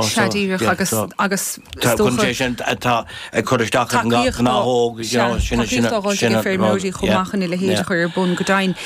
traidisiúnta agus agus is dócha gurb é sin atá ag cur isteach ar an ngnáthóg sin sin sin feirmeoirí chomh maith chun a leithéid a chur ar bun go deimhin.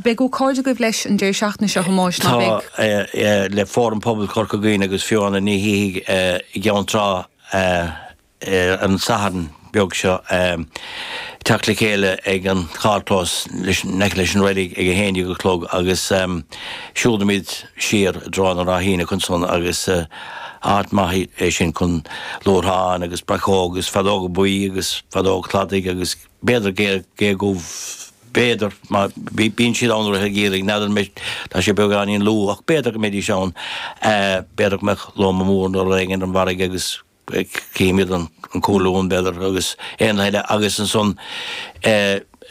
Beidh ócáid agaibh leis ar an deireadh seachtaine seo Thomáis ná beidh? le Fóram Pobail Chorca Dhuibhne agus Fiona Ní Shíthigh i gCeann Trá ar an Satharn beag seo teacht le chéile ag an charrchlós in aice leis an reilig ag a haon déag a chlog agus siúlfaimid siar i dtreo na ráithíní ansan agus áit maith é sin chun luathrán agus breacóg agus feadóga buí agus feadóg cladaigh agus b'fhéidir gé dhubh b'fhéidir mar bíonn siad ann i rith an gheimhridh n'fheadar tá sé beagáinín luath ach b'fhéidir go mbeidís ann b'fhéidir go mbeadh lóma mór nó rud éigin ar an bhfarraige agus cífimid an colúr b'fhéidir agus éanlaithe eile agus ansan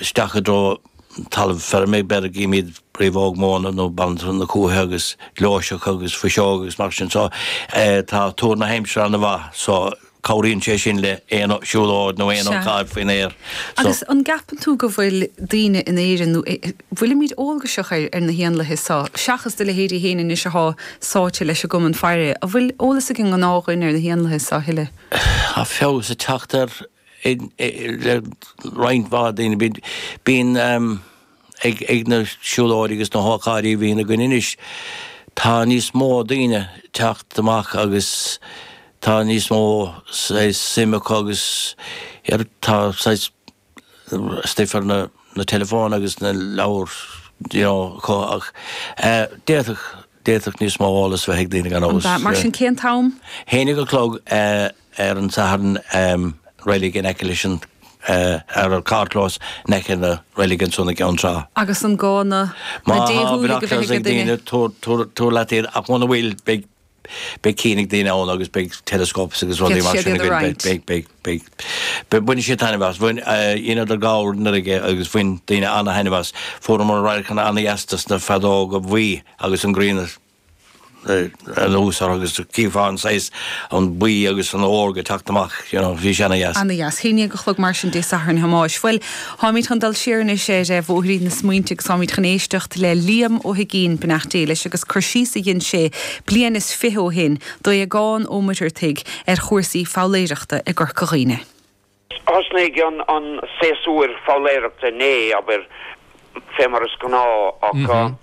isteach i dtreo talamh feirme b'fhéidir go gcífimid riabhóg móna nó banaltra na cuaiche agus gleoiseach agus fuiseog agus mar sin so tá tuar na haimsire ana-mhaith so cabhraíonn sé sin le aon siúlóid nó aon ócáid faoin aer so. Agus an gceapann tú go bhfuil daoine in Éirinn nó i. bhfuilimid eolgaiseach ar na héanlaithe seo, seachas do leithéidí fhéin anois athá sáite leis an gCumann Faire? An bhfuil eolas ag an ngnáthdhuine ar na héanlaithe seo a thuilleadh? Tá feabhas ag teacht air le roinnt mhaith daoine. Bíonn bíonn ag ag na siúlóidí agus na hócáidí a bhíonn againn anois, tá níos mó daoine teacht amach agus tá níos mó saghas suim acu agus tá saghas stuif ar na teileafóin agus na leabhar you know ach d'fhéadfadh d'fhéadfadh níos mó eolas bheith ag daoine gan dabht. Mar sin cén t-am? A haon déag a chlog ar an Satharn em reilig in aice leis an eh ar an carrchlós in aice na reilig ansan i gCeann Trá. Agus an gá má tá déshúiligh a bheith binoculars ag ag duine? daoine tabhair tabhair tabhair leat iad ach muna bhfuil beidh beidh cinn ag daoine ann agus beidh telescopes agus rudaí mar sin againn. Beidh, beidh, beidh, beidh, beidh baineann siad taitneamh as. Bhain eh, é ana-dheas i bhFeabhra anuraidh agus bhain daoine ana-thaitneamh as. Fuaireamar radharcanna ana-dheas ar na feadóga bhuí agus an ghrian ar eh, ar nós orthu agus chífeá an saghas an buí agus an órga ag teacht amach, you know, bhí sé ana-dheas. Ana-dheas. A haon déag a chlog mar sin Dé Sathairn Thomáis. Bhuel, Táimid chun dul siar anois ar bhóithrín na smaointe agus táimid chun éisteacht le Liam Ó hUigín, beannacht Dé leis, agus cur síos a dhein sé bliain is fiche ó shin d'Aodhagán Ó Muircheartaigh ar chúrsaí foghlaeireachta i gCorca Dhuibhne. Thosnaigh an séasúr foghlaeireachta inné, abair, fé mar is gnáth, ach.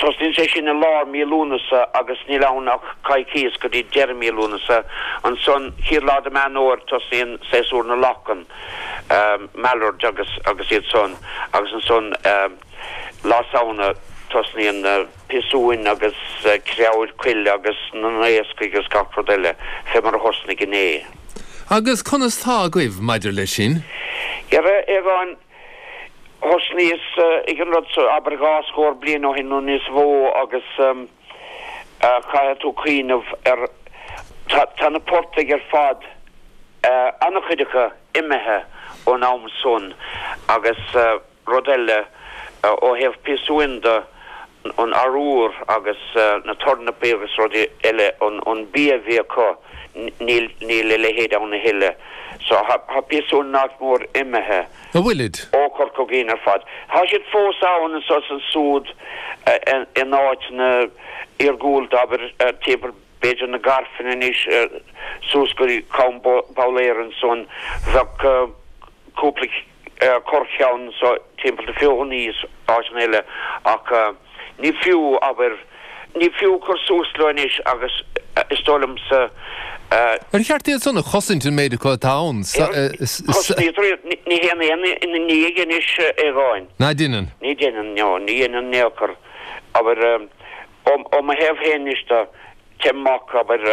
Tosnaíonn sé sin i lár mí Lúnasa agus níl ann ach coicíos go dtí deireadh mí Lúnasa. Ansan, céad lá de Meán Fómhair tosnaíonn séasúr na lachan, mallards agus agus iad san agus ansan Lá Samhna tosnaíonn na piasúin agus creabhair coille agus na naoscaigh agus gach rud eile fé mar a thosnaigh inné. Agus conas tá agaibh maidir leis sin? Dhera a Aogáin, Thosnaíos ag an rud seo abair dhá scór bliain ó shin nó níos mhó agus caithfidh tú cuimhneamh air, tá na portaigh ar fad, an-chuid acu imithe ón am san agus rud eile ó thaobh piasúin de, an arbhar agus na tornapaí agus rudaí eile, an bia a bhí acu, níl a leithéid ann a thuilleadh. So tá piasúin nach mór imithe. An bhfuilid? Ó Chorca Dhuibhne ar fad. Tá siad fós ann anseo is ansúd in áiteanna iargúlta, abair, timpeall b'fhéidir na Gairfeanaí anois suas go dtí Com Búlaeir ansan, bheadh cúpla. corrcheann so timpeall na Feothanaí is áiteanna eile ach ní fiú abair ní fiú cur suas leo anois agus is dóigh liomsa. Ar cheart iad san a chosaint an méid acu atá ansan? An gcosnaítear iad? Ní dheineann éinne é anois a Aogáin. Ná deineann. Ní dheineann, no ní dhéanann in aon chor abair Ó mo thaobh féin anois de, téim amach abair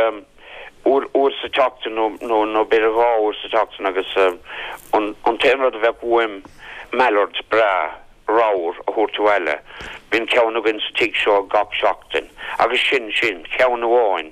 uair sa tseachtain nó b'fhéidir dhá uair sa tseachtain agus an t-aon rud a bheadh uaim mallard breá ramhar a thabhairt abhaile. Bíonn ceann againn sa tigh seo gach seachtain agus sin sin, ceann amháin.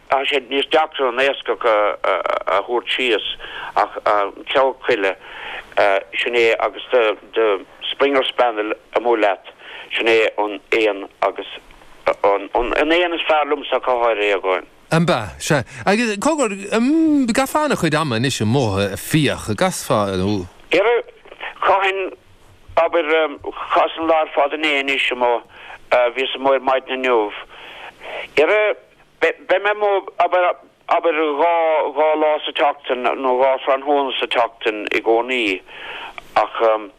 Tá sé níos deacra an naoscach a thabhairt síos ach an creabhar coille sin é agus do Springer Spaniel amuigh leat sin é an éan agus an éan is fearr liomsa ach go háirithe a Aogáin. Ambasa. Agus cogar an gcaithfeá ana-chuid ama anois amuigh ag fiach an gcaithfeá nó. Dhera chaithfinn abair chaitheas an lá ar fad inné anois amuigh bhíos amuigh ar maidin inniu. Dhera Beidh mé amuigh, abair, abair dhá, dhá lá sa tseachtain nó dhá thráthnóna sa tseachtain i gcónaí ach ehm,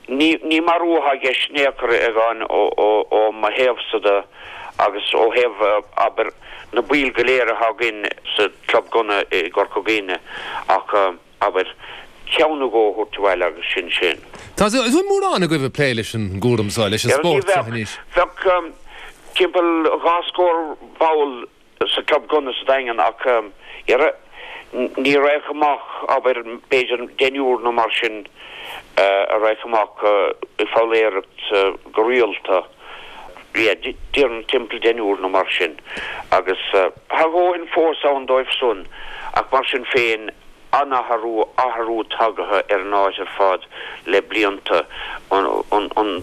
ní, ní marú atá i gceist in aon chor a Aogáin ó, ó, ó mo thaobhsa de agus ó thaobh, abair, na baill go léir atá againn sa Club Gunna i gCorca Dhuibhne ach ehm, Abair, Ceann nó dhó a thabhairt abhaile agus sin sin. Tá mórán agaibh ag plé leis an gcúram seo, leis an spórt seo anois. Bheadh timpeall dhá scór ball sa club gunna sa Daingean ach, dhera, ní rachadh amach, abair, b'fhéidir deichniúr nó mar sin a rachadh amach ag foghlaeireacht go rialta. Yeah déarfainn timpeall deichniúr nó mar sin agus tá a ndóthain fós ann dóibh san ach mar sin féin an-athrú, athrú tagaithe ar an áit ar fad le blianta. An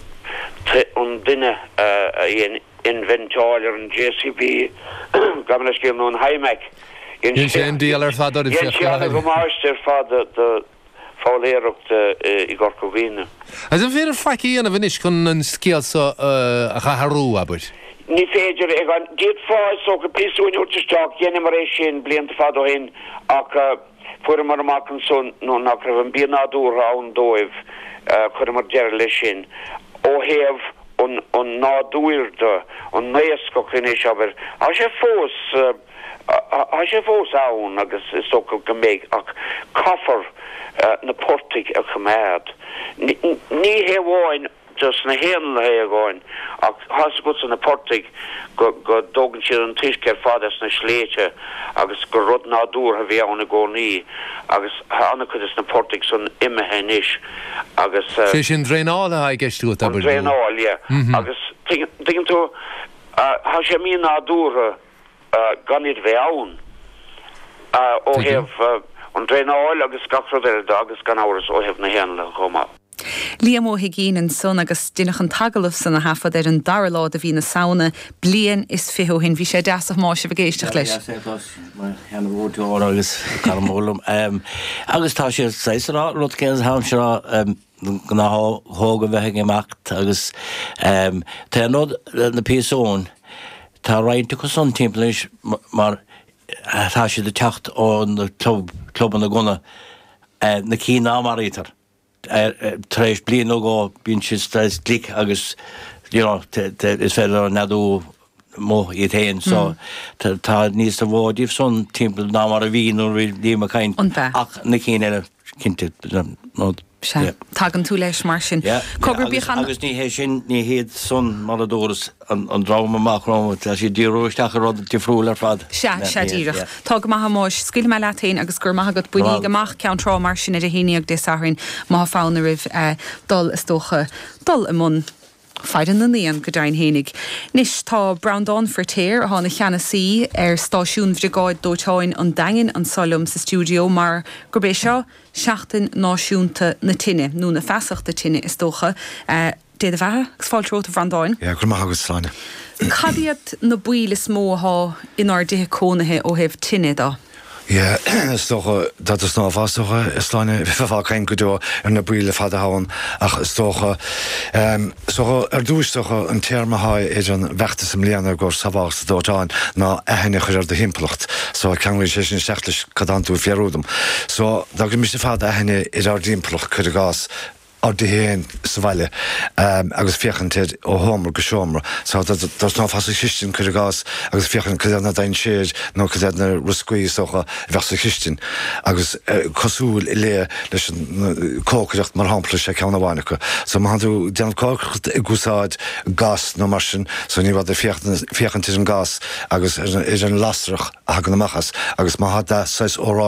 duine a dhein inventáil ar an JCB gabh mo leithscéal nó an Hymac, dhein sé an diabhal ar fad orm, Dhein sé an-damáiste ar fad foghlaeireacht i gCorca Dhuibhne. Agus an féidir faic a dhéanamh anois chun an scéal seo a athrú, abair? Ní féidir, a Aogáin. D'fhéadfá, is dócha, piasúin a thabhairt isteach. Dheineamar é sin blianta fada ó shin ach fuaireamar amach ansan nach raibh an bia nádúrtha ann dóibh. Chuireamar deireadh leis sin. Ó thaobh an nádúir de, an naoscach anois, abair, tá sé fós. Tá sé fós ann agus is dócha go mbeidh ach caithfear na portaigh a choimeád. Ní hamháin do sna héanlaithe é, a Aogáin, ach tá a fhios agatsa na portaigh go dtógann siad an t-uisce ar fad as na sléibhte agus gur rud nádúrtha a bhí ann i gcónaí agus tá an-chuid do sna portaigh san imithe anois agus Sé sin draenáil atá i gceist agat, abair, nó? An draenáil, yeah. Agus tuigeann tú, tá sé mí-nádúrtha. gan iad a bheith ann ó thaobh an draenáil agus gach rud eile de agus gan amhras ó thaobh na héanlaithe chomh maith. Liam Ó hUigín ansan agus deineadh an t-agallamh san a thaifead ar an dara lá de mhí na Samhna bliain is fiche ó shin. Bhí sé deas a Thomáis bheith ag éisteacht leis. Bhí sé deas é agus mo sheana mhúinteoir agus cara mór liom agus tá sé saghas ag rá an rud céanna sa am seo. gnáthóga a bheith ag imeacht agus tá an rud le na piasúin, tá roinnt acu san timpeall anois mar tá siad ag teacht ó na club, clubanna gunna, na cinn ná maraítear, tar éis bliain nó dhó bíonn siad saghas glic agus you know is féidir leo neadú. amuigh iad féin so tá níos mó díobh san timpeall ná mar a bhí nuair a bhí Liam ag caint ach na cinn eile cinnte nó Sea, tagann tú leis mar sin. Cogar bíodh an. Agus ní hé sin, ní hiad san mar a dúras an dream amach romhat, tá siad ag díriú isteach ar rud difriúil ar fad. Sea, sea díreach. Tá go maith a Thomáis, scaoilfidh mé leat féin agus go raibh maith agat. Bainíg amach Ceann Trá mar sin ar a haon déag Dé Sathairn má tá fonn oraibh dul is dócha dul i mbun faire na n-éan go deimhin fhéinig. Anois tá Breandán Firtéar, atá ina cheannasaí ar stáisiún Bhriogáid Dóiteáin an Daingin anseo liom sa stiúideo mar gurb é seo Seachtain Náisiúnta na Tine, nó na Feasachta Tine is dócha. Dé do bheatha agus fáilte romhat a Bhreandáin. Go raibh maith agat, Sláine. Cad iad na baoil is mó atá inár dtithe cónaithe ó thaobh tine de? Yeah, is dócha, that is ná fáth is dócha, is lán le bheith ag caint go deo ar na baoil ar fad atá ann ach is dócha, em, is dócha ar dtús, is dócha an téarma atá ar an bhfeachtas i mbliana i gcomhair sábháilteacht sa dóiteán ná aithne a chur ar do thimpeallacht. So ceanglaíonn sé sin isteach leis cad atánn tú ag fiafraí díom. So dá bhféachaimis ar fad aithne ar ár dtimpeallacht, cuir i gcás, ár dtithe féin sa bhaile agus féachaint air ó sheomra go seomra. So dá dtosnófá sa chistin, cuir i gcás, agus féachaint cad iad na dainséir nó cad iad na rioscaí is dócha a bheadh sa chistin. Agus cosúil le leis an cócaireacht, mar shampla, is é ceann amháin acu. So má tánn tú ag déanamh cócaireacht ag úsáid gas nó mar sin, so ní mór duit féachaint ar an gas agus ar an lasair a thagann amach as. Agus má tá sé saghas oráiste,